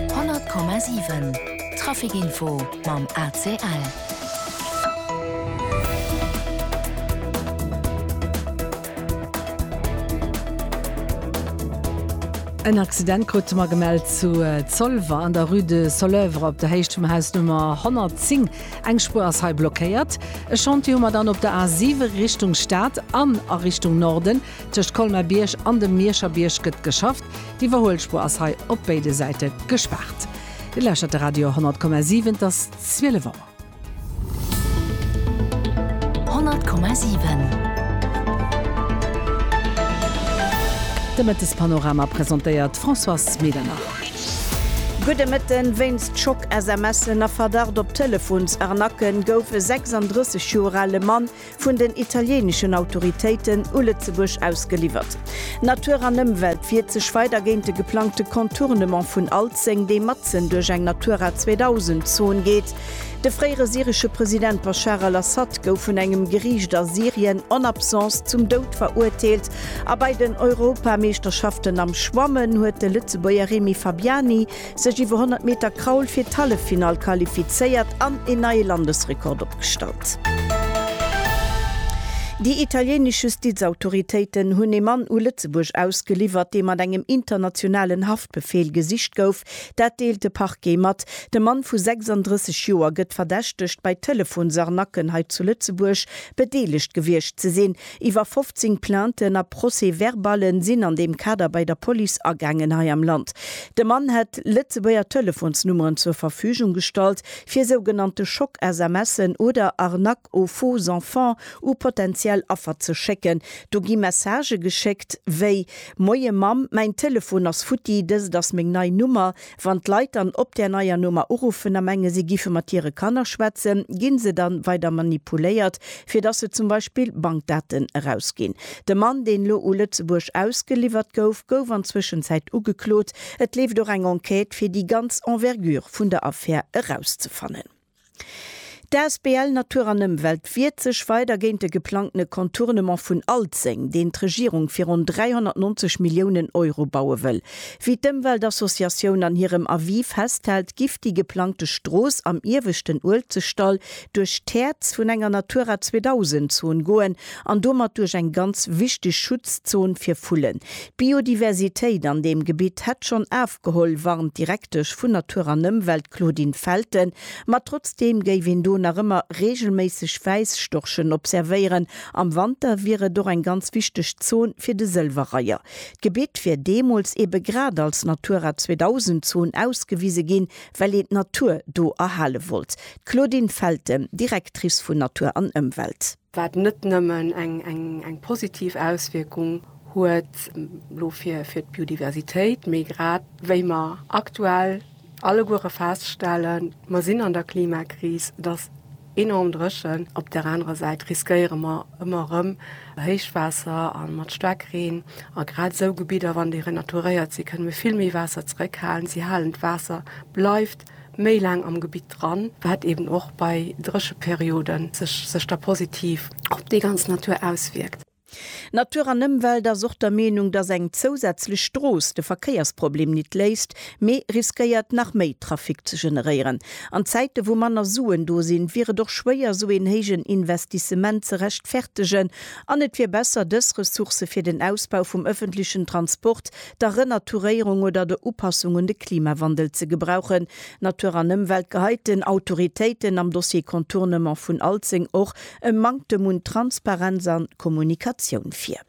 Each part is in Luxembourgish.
100,7 Trafic Info mam ACL. En Accident krute mer gemellt zu Zolwer an der Rue de Soleuvre op der Héicht vum Haus Nummer 110. Eng Spuer ass hei blockéiert. E Chantier hu mer dann op der A7 Richtung Stad an a Richtung Norden. Tëscht Colmer-Bierg an dem Mierscher Bierg gëtt geschafft. D'Iwwerhuelspuer ass hei op béide Säite gespaart. Dir lauschtert de Radio 10,7, et ass 12 Auer. 10,7 De Mëttespanorama presentéiert d'Françoise Medernach. Gudde Mëtten. Wéinst Schock-SMSen a Verdacht op Telefon's-Arnaque gouf e 36 Joer ale Mann vun den italieneschen Autoritéiten u Lëtzebuerg ausgeliwwert. Natur an Ëmwelt wiert sech weider géint de geplangte Contournement vun Alzeng, dee matzen duerch eng Natura 2000 Zon geet. De fréiere syresche President Baschar al-Assad gouf vun engem Geriicht a Syrien en absence zum Doud verurteelt a bei den Europameeschterschaften am Schwammen huet de Lëtzebuerger Remy Fabiani sech iwwer 100 Meter Kraul fir d'Halleffinall qualifizéiert an een neie Landesrekord opgestallt. Déi italieenesch Justizautoritéiten hunn ee Mann u Lëtzebuerg ausgeliwwert, dee mat engem internationalen Haftbefeel gesicht gouf. Dat deelt de Parquet mat. De Mann vu 36 Joer gëtt verdächtegt, bei Telefonsarnacken hei zu Lëtzebuerg bedeelegt gewiescht ze sinn. Iwwer 15 Plainten a Procès-verballe sinn an deem Kader bei der Police agaangen hei am Land. De Mann hätt Lëtzebuerger Telefonsnummeren zur Verfügung gestallt, fir sougenannte Schock-SMSen oder Arnaques aux faux enfants u potentiell Affer ze schécken. Do gi Messagë geschéckt wéi, Moie Mamm, mäin Telefon ass futti, dëst ass meng nei Nummer. Wann d'Leit dann op där neier Nummer uruffen a menge si gife mat hire Kanner schwätzen, gi se dann weider manipuléiert, fir dass se zum Beispill Bankdaten erausginn. De Mann, deen elo u Lëtzebuerg ausgeliwwert gouf, gouf an Zwëschenzäit ugeklot. Et leeft och eng Enquête, fir déi ganz Envergure vun der Affär erauszefannen. D'Asbl Natur an Ëmwelt wiert sech weider géint de geplangtene Contournement vun Alzeng, deen d'Regierung fir ronn 390 Milliounen Euro baue wëll. Wéi d'Ëmweltassociatioun an hirem Avis festhält, giff déi geplangte Strooss am ieweschten Uelzechtdall duerch d'Häerz vun enger Natura 2000 Zon goen an domat duerch eng ganz wichteg Schutzzon fir Vullen, D'Biodiversitéit an deem Gebitt hätt schonn afgeholl, warnt d'Direktesch vun Natur an Ëmwelt d'Claudine Felten. Ma trotzdeem géif een do nach ëmmer reegelméisseg Wäisstorchen observéieren. Am Wanter wier et och eng ganz wichteg Zon fir de Sëlwerreiher. D'Gebitt wier deemools ebe grad als Natura 2000 Zon ausgewise ginn, well een d'Natur do erhale wollt. D'Claudine Felten, Directrice vun Natur an Ëmwelt. wat net nëmmen eng positiv Auswierkung huet elo fir d'Biodiversitéit, mee grad wéi mer aktuell alleguere feststellen, mer sinn an der Klimakris, et ass enorm dréchen, op där anerer Säit riskéiere mer ëmmer erëm Héichwaasser a mat Staarkreen a grad esou Gebidder, wann déi renaturéiert sinn, kënne mir vill méi Waasser zeréckhalen. Si halen d'Waasser, bleift méi laang am Gebitt dran, wat eben och bei Drécheperioden sech da positiv op déi ganz Natur auswierkt. Natur an Ëmwelt ass och der Meenung, dass eng zousätzlech Strooss de Verkéiersproblem nit léist, mee riskéiert nach méi Trafic ze generéieren. An Zäite wou manner Suen do sinn, wier et och schwéier esou een héijen Investissement ze rechtfertegen an et wier besser dës Ressourcë fir den Ausbau vum ëffentlechen Transport der Renaturéierung oder der Upassung un de Klimawandel ze gebrauchen. Natur an Ëmwelt geheit den Autoritéiten am Dossier Contournement vun Alzeng och e Manktem un Transparenz an Kommunikatioun vir.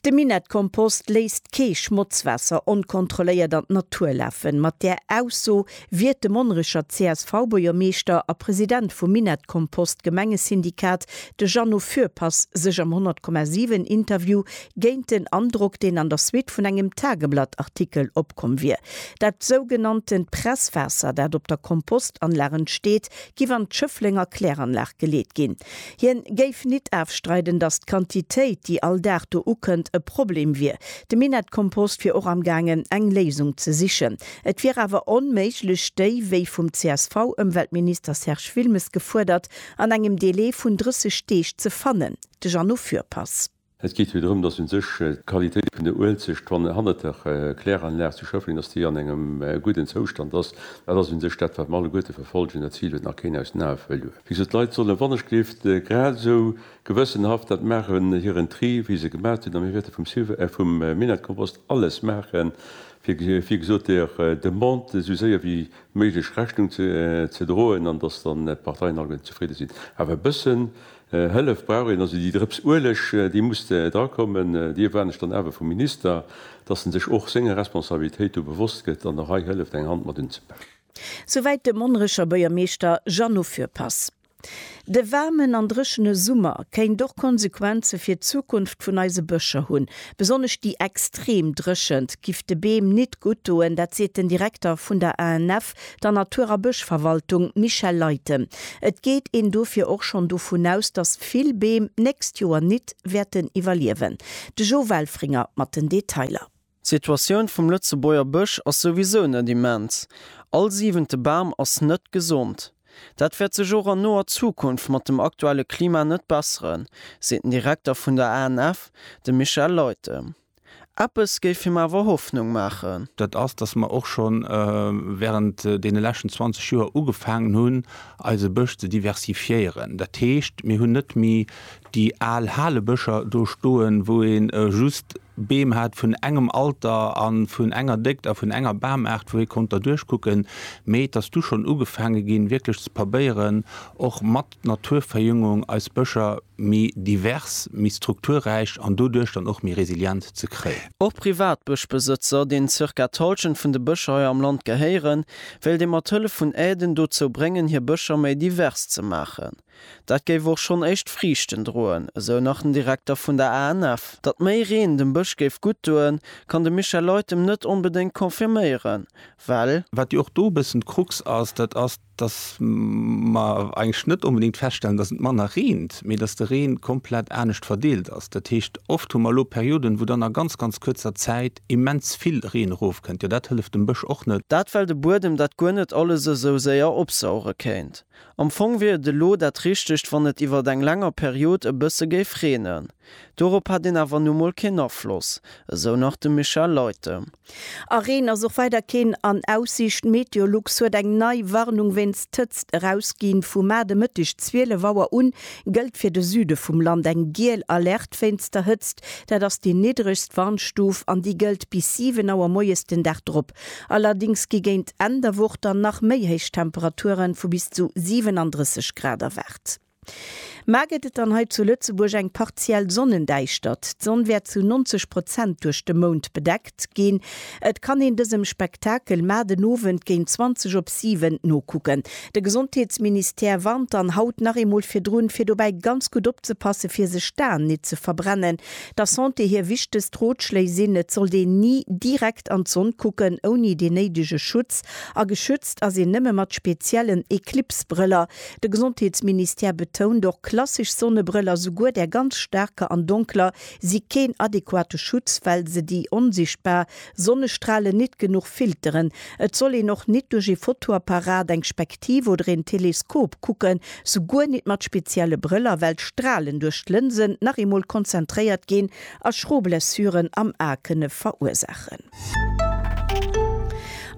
De Minettkompost léisst kee Schmotzwaasser onkontrolléiert an d'Natur lafen. Mat där Ausso wiert de Monnerecher CSV-Buergermeeschter a President vum Minettkompost-Gemengesyndikat, de Jeannot Fürpass, sech am 100,7 Interview géint den Androck, deen an der Suite vun engem Tageblatt-Artikel opkomm wier. Dat sougenanntent Presswaasser, dat op der Kompostanlag entsteet, giff an d'Schëfflenger Kläranlag geleet ginn. Hien géif nit afstreiden, datt d'Quantitéit, déi all Dag do ukënnt, e Problem wier. De Minett Kompost wier och am gaangen, eng Léisung ze sichen. Et wier awer onméiglech, déi, wéi vum CSV-Ëmweltminister Serge Wilmes gefuerdert, an engem Delai vun 30 Deeg ze fannen. De Jeannot Fürpass. Et geet jo drëm, dass u sech d'Qualitéit vun der Uelzecht, wann hannert der Kläranlag zu Schëffleng, dass déi an engem gudden Zoustand ass. Dat ass u sech dat, wat mer alleguerte verfollegen. Dat Zil huet nach keen aus den Ae verluer. Wéi gesot, d'Leit sollen wann ech géif grad esou gewëssenhaft dat maachen, hiren Tri, wéi se gemaach hunn, a mir wäerte vum Minettekompost alles maachen, fir, wéi gesot, der Demande esou séier wéi méiglech Rechnung ze droen an dass dann d'Parteien alleguerten zefridde sinn. Awer e bëssen Hëllef brauch een, also déi Drëps Ueleg, déi musste drakommen. Déi erwaarden ech dann awer vum Minister, dass en sech och senger Responsabilitéit do bewosst gëtt an och hei hëlleft eng Hand mat unzepaken. Souwäit de Monnerecher Buergermeeschter Jeannot Fürpass. De waarmen an dréchene Summer kéint och Konsequenze fir d'Zukunft vun eise Bëscher hunn. Besonnesch déi extrem Dréchent giff de Beem nit gutt doen, dat seet den Direkter vun der ANF der Natur a Bëschverwaltung Michèle Leyten. Et geet een dofir och schonn dovun aus, datt vill Beem d'nächst Joer nit wäerten iwwerliewen. De Jo Welfringer mat den Detailer. D'Situatioun vum Lëtzebuerger Bësch ass souwisou net immens. All siwente Bam ass net gesond. Dat wäert sech och an noer Zukunft mat dem aktuelle Klima net besseren, seet den Direkter vun der ANF, de Michel Leyten. Eppes géif him awer Hoffnung maachen. Dat ass, dass mer och scho während deene leschten 20 Joer ugefaangen hunn, eise Bësch ze diversifiéieren. Dat heescht, mir hunn net méi déi al Halebëscher do stoen, wou ee just Beem hat vun engem Alter a vun enger Déckt a vun enger Bamaart, wou ee konnt derduerch kucken, mee et ass du schonn ugefaange ginn, wierklech ze probéieren, och mat Naturverjüngung eis Bëscher. méi divers, méi strukturräich an doduerch dann och méi resilient ze kréien. Och Privatbëschbesëtzer, deenen zirka d'Halschent vun de Bëscher hei am Land gehéieren, wéilt ee mat Hëllef vun Aiden dozou bréngen, hir Bëscher méi divers ze maachen. Dat géif och schonn éischt Friichten droen, esou nach den Direkter vun der ANF. Datt méi Reen dem Bësch géif gutt doen, kann de Michel Leutem net onbedéngt confirméieren, well. Wat jo och do e bëssen d'Krux ass, dat ass dass mer eigentlech net onbedéngt feststellen, dass et manner reent, mee dass de Reen komplett anescht verdeelt ass. Dat heescht, oft hu mer elo Perioden, wou dann a ganz, ganz kuerzer Zäit immens vill Reen erofkënnt. Jo, dat hëlleft dem Bësch och net. Dat well de Buedem dat guer net alles esou séier opsauge kéint. Am Fong wier et elo dat Richtegt, wann et iwwert eng länger Period e bësse géif reenen. Dorop hätt een awer nu mol keen Afloss, esou nach de Michel Leutem. A Reen ass och weider keen an Aussiicht. Meteolux huet eng nei Warnung wéinst Hëtzt erausginn. Vu mar de Mëtteg 12 Auer un gëllt fir de Süde vum Land eng giel Alerte wéinst der Hëtzt. Dat ass déi niddregst Warnstuf an déi gëllt bis 7 Auer moies den Dag drop. Allerdéngs gi géint Enn der Woch dann nach méi héich Temperature vu bis zu 37 Grad erwaart. Mar gëtt et dann hei zu Lëtzebuerg eng partiell Sonnendäischtert? D'Sonn wäert zu 90 Prozent duerch de Mound bedeckt ginn. Et kann een dësem Spektakel mar den Owend géint 20 op 7 nokucken. De Gesondheetsministère warnt dann haut nach eemol virdrun, fir dobäi ganz gutt opzepasse fir sech d'Aen nit ze verbrennen. Der Santé hir wichtegst Rotschléi sinn, et sollt een ni direkt an d'Sonn kucken ouni deen néidege Schutz, a geschützt ass een nëmme mat speziellen Eclipse-Brëller. De Gesondheetsministère betount och, klassesch Sonnebrëll a souguer där ganz staarker an donkler si keen adequate Schutz, well se déi onsichtbar Sonnestralen nit genuch filteren. Et soll een och nit duerch ee Fotoapparat, eng Spektiv oder een Teleskop kucken, souguer nit mat spezielle Brëller, well d'Stralen duerch d'Lënsen nach eemol konzentréiert ginn a schro Blessuren am A kënne verursaachen.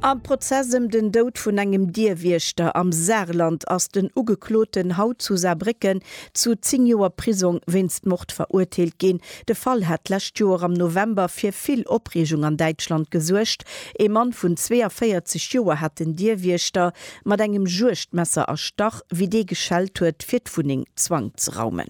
Am Prozess ëm den Doud vun engem Dierwiechter am Saarland ass den Ugekloten haut zu Saarbrécken zu 10 Joer Prisong wéinst Mord verurteelt ginn. De Fall hat d'lescht Joer am November fir vill Opreegung an Däitschland gesuergt. Ee Mann vun 42 Joer hat den Dierwiechter mat engem Juegdmesser erstach, wéi dee geschellt huet, fir d'Wunneng Zwang ze raumen.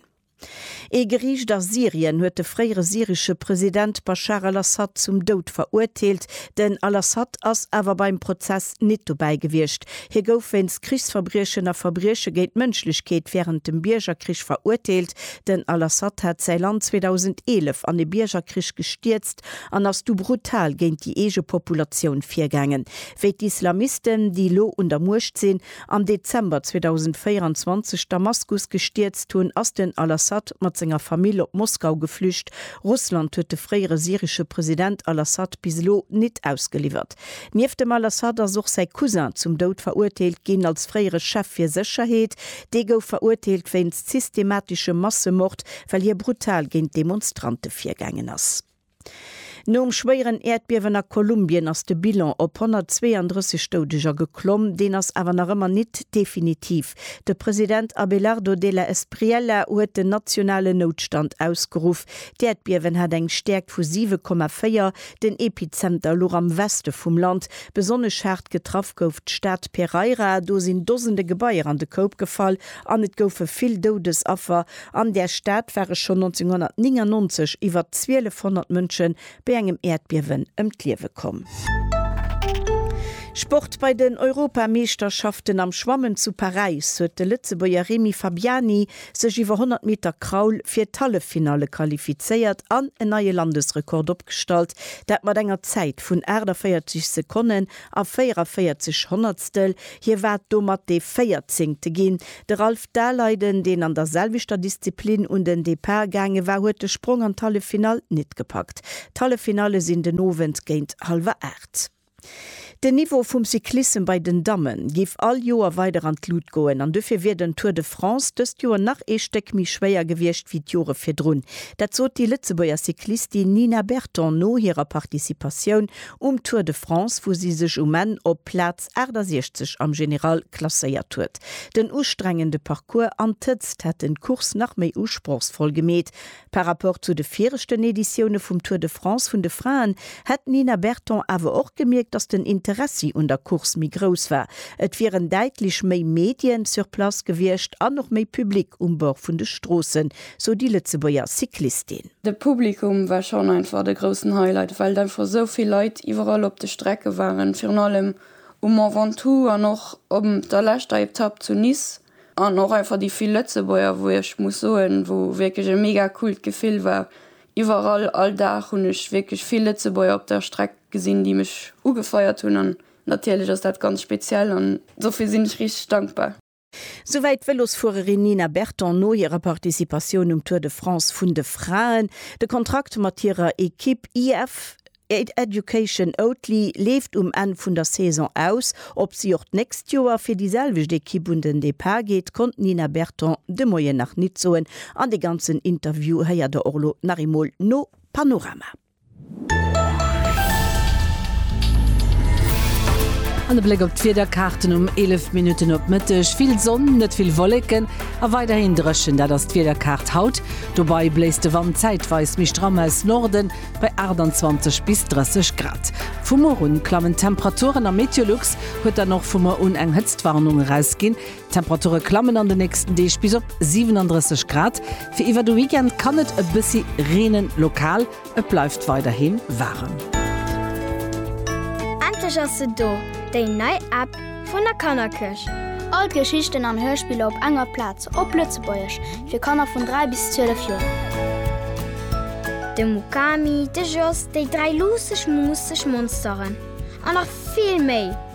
Ee Geriicht a Syrien huet de fréiere syresche President Baschar al-Assad zum Doud verurteelt. Den al-Assad ass awer beim Prozess nit dobäi gewiescht. Hie gouf wéinst Krichsverbriechen a Verbrieche géint d'Mënschlechkeet wärend dem Biergerkrich verurteelt. Den al-Assad hat säi Land 2011 an e Biergerkrich gestierzt an ass du brutal géint déi eege Populatioun virgaangen. Wéi d'Islamisten, déi lo un der Muecht sinn, am Dezember 2024 Damaskus gestierzt hunn, ass den al-Assad mat senger Famill op Moskau geflücht. Russland huet de fréiere syresche President al-Assad bis elo nit ausgeliwwert. Nieft dem al-Assad ass och säi Cousin zum Doud verurteelt ginn. Als fréiere Chef fir Sécherheet, dee gouf verurteelt wéinst systematischem Massemord, well hie brutal géint Demonstrante virgaangen ass. Nom schwéieren Äerdbiewen a Kolumbien ass de Bilan op 132 Doudeger geklomm. Deen ass awer nach ëmmer nit definitiv. De President Abelardo de la Espriella huet den nationalen Noutstand ausgeruff. D'Äerdbiewen hat eng Stäerkt vu 7,4. Den Epizenter louch am Weste vum Land. Besonnesch haart getraff gouf d'Stad Pereira. Do sinn Dosende Gebaier an de Koup gefall an et goufe vill Doudesaffer. An där Stad ware schonn 1999 iwwer 1200 Mënsche bei engem Äerdbiewen ëm d'Liewe komm. Sport, Bei den Europameeschterschaften am Schwammen zu Paräis huet de Lëtzebuerger Remy Fabiani sech iwwer 100 Meter Kraul fir d'Halleffinalle qualifizéiert an en neie Landesrekord opgestallt, dat mat enger Zäit vun 48 Sekonnen a 44 Honnertstel. Hie war domat dee véierzéngte ginn, De Ralph Daleiden, deen an der selwechter Disziplin un den Depart gaange war, huet de Sprong an d'Halleffinall nit gepackt. D'Halleffinalle sinn den Owend géint hallwer 8. Den Niveau vum Cyclissem bei den Damme giff all Joer weider an d'Lut goen an dofir wier den Tour de France dëst Joer nach ee Stéck méi schwéier gewiescht wéi d'Jore virdrun. Dat sot déi Lëtzebuerger Cyclistin Nina Berton no hirer Participatioun um Tour de France, wou si sech um Enn op Plaz 68 am General klasséiert huet. Den ustrengende Parcours an d'Hëtzt hätten d'Course nach méi usprochsvoll gemeet. Par Rapport zu de viregten Editioune vum Tour de France vun de Fraen hätt d'Nina Berton awer och gemierkt, datt den Interessi un der Course méi grouss war. Et wieren däitlech méi Medien sur place gewiescht an och méi Public um Bord vun de Stroossen, sou déi Lëtzebuerger Cyclistin. De Publikum war schonn einfach de groussen Highlight, well einfach esou vill Leit iwwerall op de Strecke waren, virun allem um Mont Ventoux an och op der leschter Etapp zu Nice. An och einfach déi vill Lëtzebuerger, wou ech muss soen, wou wierklech e mega coolt Gefill war. Iwwerall, all Dag hunn ech wierklech vill Lëtzebuerger op der Streck gesinn, déi mech ugefeiert hunn an natierlech ass dat ganz speziell an dofir sinn ech richteg dankbar. Souwäit d'Vëlosfuererin Nina Berton no hirer Participatioun um Tour de France vun de Fraen. De Kontrakt mat hirer Ekipp IF Education Oatly leeft um Enn vun der Saison aus. Ob si och d'nächst Joer fir déi selwecht Ekipp un den Depart geet, konnt d'Nina Berton de Moien nach nit soen. An de ganzen Interview héiert der och lo nach eemol no Panorama. An e Bléck op d'Wiederkaarten um 11 Minutten op Mëtteg. Vill Sonn, net vill Wolleken a weiderhin dréchen, dat ass d'Wiederkaart haut. Dobei bléist de Wand zäitweis méi stramm aus Norden bei 28 bis 30 Grad. Vu muer un klammen d'Temperaturen a Meteolux huet dann och vu muer un eng Hëtztwarnung erausginn. D'Temperature klammen an de nächsten Deeg bis op 37 Grad. Fir iwwer de Weekend kann et e bëssi reenen, lokal. Et bleift weiderhi waarem. Endlech ass se do, déi nei App vun der Kannerkirch! All d'Geschichten an Hörspiller op enger Plaz, op Lëtzebuergesch, fir Kanner vun 3 bis 12 Joer. De Mukami, de Jos, déi dräi luusseg, muusseg Monsteren an nach vill méi!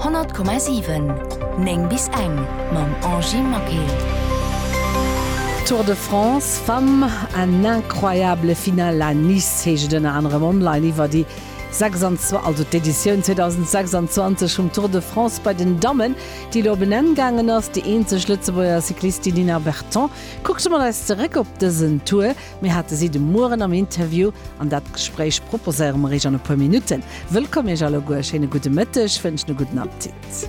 100,7 9 bis eng mam Angie Maquet. Tour de France Femmes, en incroyable final à Nice heescht et ënner anerem online iwwer déi 26 also d'Editioun 2026 vum Tour de France bei den Dammen, déi elo op en Enn gaangen ass. Déi eenzeg Lëtzebuerger Cyclistin Nina Berton kuckt mat eis zeréck op dësen Tour. Mir hate si de Mueren am Interview an dat Gespréich proposéiere mer iech an e puer Minutten. Wëllkomm iech alleguer, schéine gudde Mëtteg, wënschen e gudden Appetit.